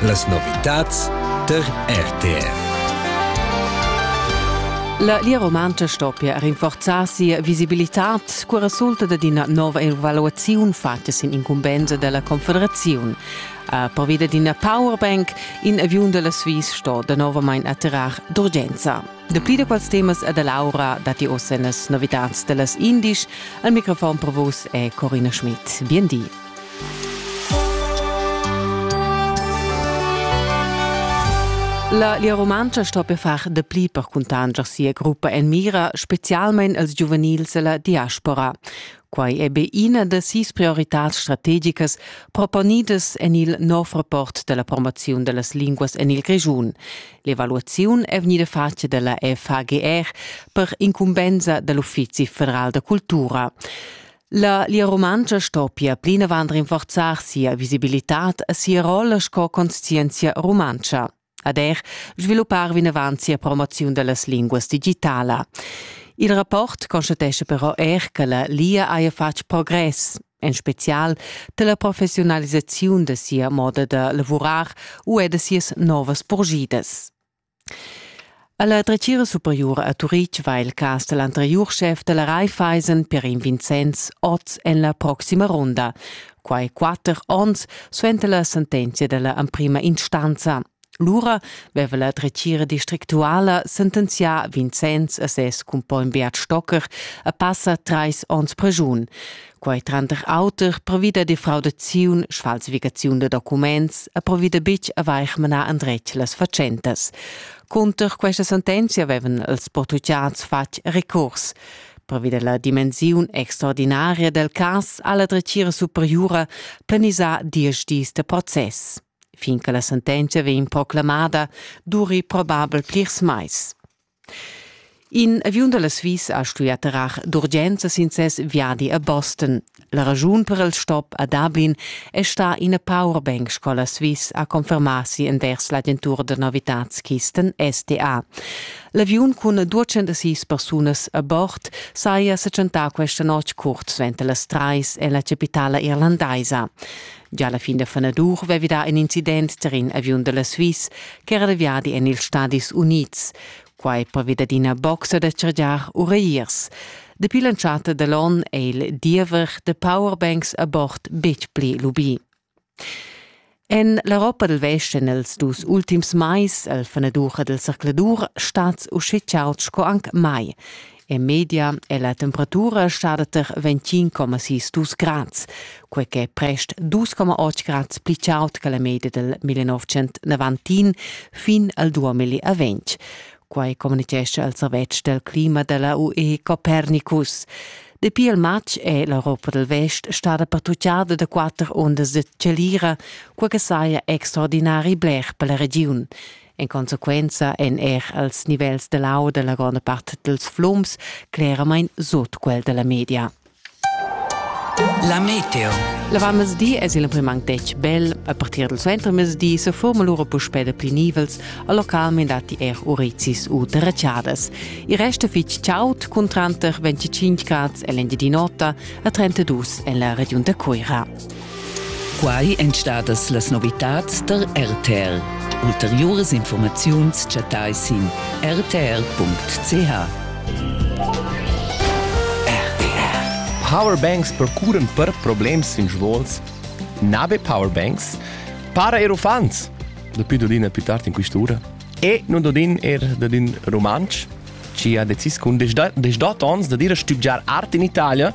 Las novitads tar RTR. La lia romantscha stoppia rinforzar sia visibilitad cura resulta da d'ina nova evaluaziun fatta sin incumbensa della Confederaziun. A pervida d'ina powerbank, in aviun della Swiss sto da novamain attirar d'urgenza. Dapi da quals temas e da Laura datti ossa las novitads dellas indisch. Al microfon per vos è Corina Schmidt. Bien di. La Lia Rumantscha sto per far de pli per cuntanscher sia gruppa en mira, specialmein als giuvenils della diaspora. Quai è be ina da sis prioritars strategicas proponidas en il nov rapport della promozione delle lingue en il Grischun. L'evaluazione è venuta fatta della FAGR per incumbensa dell'Ufficio federal de cultura. La Lia Rumantscha stoppia plinavant rinforzar sia visibilitad e sia rolla sco conscienzia rumantscha ad er sviluppar vinavant sia promoziun da las linguas digitala. Il rapport constatescha però er che la Lia haja fatg progress, en spezial da la professiunalisaziun da sia moda da lavurar u er da sias novas purgidas. Alla dretgira superiura a Turitg va il cas dal anteriur schef da la Raiffeisen Perin Vincenz oz en la proxima ronda, quai quatter onns suenter la sentenzia da la emprima instanza. Lura veva la dretgira districtuala sentenzià Vincenz a ses cumpogn Beat Stocker a passa trais onns pregiun. Quai tranter auter provida de fraudaziun, sfalsificaziun da documents e provida bitg a vaig manar andretg las fatschentas. Cunter questa sentenzia vevan els portugians fatg recurs provida la dimensiun extraordinaria del cas alla dretgira superiura planisà diesch dis de process. Fin che la sentenzia vegn proclamada, duri probabel plirs mais. In aviun da la Svizra ha stuì atterrar d'urgenza sin ses viadi a Boston. La raschun per il stop a Dublin è stà ina powerbank sco la Swiss ha confermà si envers l'agentur da novitads-kisten STA. L'aviun cun 206 persunas a bord saja sa tschentà questa notg curt suenter las trais en la chapitala irlandaisa. Gia la fin da fanadur vevi dà in incident tar in aviun da la Swiss ch'era da viadi en ils Stadis Unids. Quai pervi dad ina boxa da chargiar ureiers. Dapi l'entschatta da l'onn è il diever da powerbanks a bord betg pli lubì. En l'Europa dal Vest en els dus ultims mais al fanadur dal zercladur stats usche chauds sco anc mai. En media è la temperatura stada tar 25,6 dus grads, quai che è prest 2,8 grads pli chaud che la media dal 1990 fin al 2020. Quai communitgescha il servetsch del clima della UE Copernicus. Dapi il matg è l'Europa del Vest stata pattugliada da quatter ondas de chalira, quai che saja extraordinari bler per la regiun. En consequenza èn er als nivels da l'au da la gronda part dals flums cleramain sut quel da la media. La meteo. La vanmezdi es il prim anc detg bel. A partir dal suentermezdi se forma lura puspè da pli nivels, a localment datti er urizis u derracciadas. Il resto fitg chaud, cun tranter 25 grads en l'Engiadin'Ota a 32 en la regiun da Cuira. Quai èn stadas las novitads tar RTR. Ulteriuras informaziuns chattai sin rtr.ch. Powerbanks procuran per problems sin svols. Na be powerbanks, para er uffants. Dapi dodin è più tard in quest'ura. E non dodin er dadin romansch, ci ha decis cun des da, des dat ons da dire stübgiar art in Italia